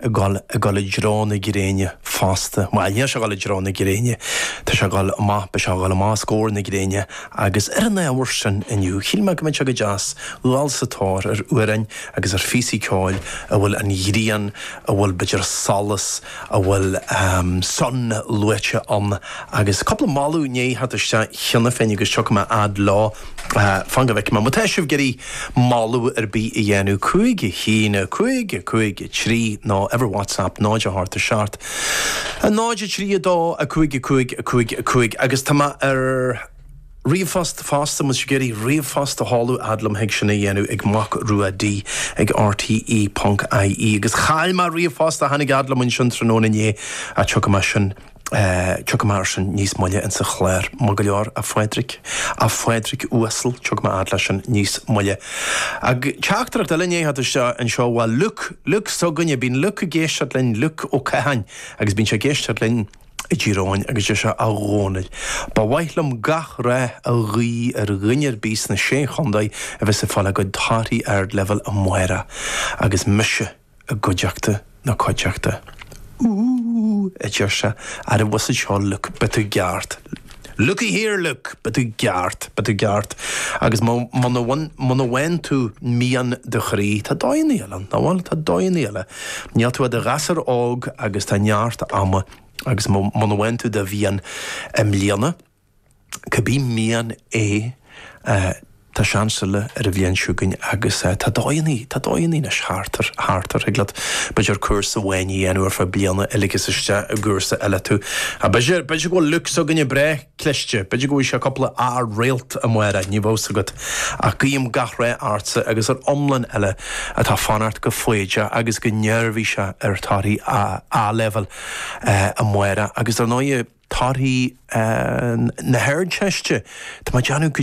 ag dul i dtreo na gréine fosta. Bhuel, níl sé ag dul i dtreo na gréine, tá sé ag dul amach, beidh sé ag dul amach os comhair na gréine agus ar an ábhar sin inniu, shíl mé go mbeadh sé go deas dul sa tóir ar amhráin agus ar phíosaí ceoil a bhfuil an ghrian, a bhfuil b'fhéidir solas, a bhfuil sun luaite ann agus cúpla moladh i ndiaidh theacht isteach cheana féin agus tiocfaidh mé fhad leo, fan go bhfeicfidh mé. Má tá sibh ag iarraidh. moladh ar bith a dhéanamh. Cúig, a haon, a cúig, a cúig, a trí, nó uimhir WhatsApp, 0, a hocht, a seacht, a náid, a trí, a dó, a cúig, a cúig, a cúig, a cúig, agus tá mé ar ríomhphost fosta, má tá sibh ag iarraidh ríomhphost a sheoladh, a fhad liom thig sin a dhéanamh, ag Mac Rua D ag rte ponc ie, agus chaill mé ríomhphost a tháinig a fhad liom ansin tráthnóna inné, a tiocfaidh mé sin. Tiocfaidh mé air sin níos moille insa chlár. Maith go leor, a Phádraig. A Phádraig uasail, tiocfaidh mé fhad leis sin níos moille. Ach teachtaireacht eile i ndiaidh theacht isteach anseo, bhuel, Liúc, Liúc s'againne, bíonn Liúc ag éisteacht linn, Liúc Ó Catháin, agus bíonn sé ag éisteacht linn i dTír Eoghain, agus deir sé, A Dhónaill, ba mhaith liom gach rath a ghuí ar dhuine ar bith sna Sé Chontae a bheas ag fáil a gcuid torthaí Ardleibhéil amárach, agus mise. i gcuideachta na cuideachta. Ooh! a deir sé, neirbhíseach. Seo, Luke, beidh tú gceart. Looky here, Luke, beidh tú gceart, beidh tú gceart, agus má, muna bhfaigheann, muna bhfaigheann tú mian do chroí, tá dóigheanna eile ann, nach bhfuil, tá dóigheanna eile. Níl tú ach i do ghasúr óg agus tá neart ama, agus má, muna bhfaigheann tú do mhian i mbliana, Cibé mian é, tá seans eile ar an bhliain chugainn agus tá dóigheanna, tá dóigheanna anois thart, thart ar, thig leat, b'fhéidir, cúrsa amháin a dhéanamh ar feadh bliana a ligeas isteach i gcúrsa eile tú. B'fhéidir, b'fhéidir go bhfuil Luke s'againne breá cliste, b'fhéidir go bhfaighidh sé cúpla A réalt amárach, ní bheadh 's agat ach guím gach rath ortsa agus ar iomlán eile atá ag fanacht go foighdeach agus go neirbhíseach ar torthaí A-Leibhéal amárach, agus ar ndóigh. torthaí na hArdteiste. Tá mé ag déanamh go.